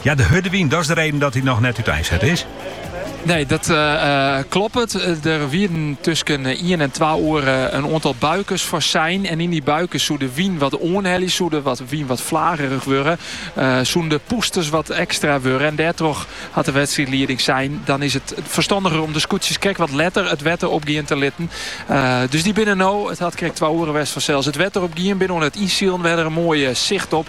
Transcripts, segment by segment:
Ja, de hurde wyn, dat is de reden dat dy noch net úteinset is? Nee, dat kloppet. Der wienen tusken ien en twa oere in oantal buikers foar sein. En yn dy buikes soe de wyn wat oanhelje, soe de wat wyn wat flagerich wurde. soene de poesters wat ekstra wurde. En dêrtroch hat de wedstriidlieding sein, dan is it ferstanniger om de skûtsjes krekt wat letter it wetter opgean te litten. dus dy binne no, it hat krekt twa oere west fansels, it wetter opgien. Binne oan it ynsilen. We ha der in moai sicht op.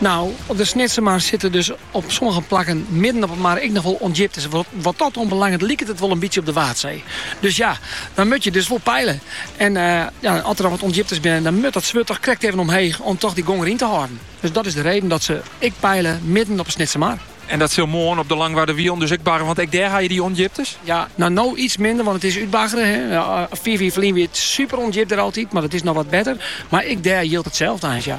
No, de Snitsermar sitte dus op sommige plakken midden op 'e mar ek noch wol ûndjiptes. Wat dat oanbelanget liket it wol in bytsje op de Waadsee. Dus ja, dan moat je dus wol peile. En ja, as der dan wat ûndjiptes binne, dan moat dat swurd toch krekt even omheech om toch dy gong deryn te hâlden. Dus dat is de reden dat se ek peile midden op 'e Snitsermar. En dat sil moarn op de Langwarder Wielen dus ek barre, want ek dêr ha je dy ûndjiptes? Ja, no no iets minder, want it is útbaggere. Fiif jier ferlyn wie it super ûndjip dêr altyd, mar dat is no wat better. Mar ek dêr jildt itselde eins, ja.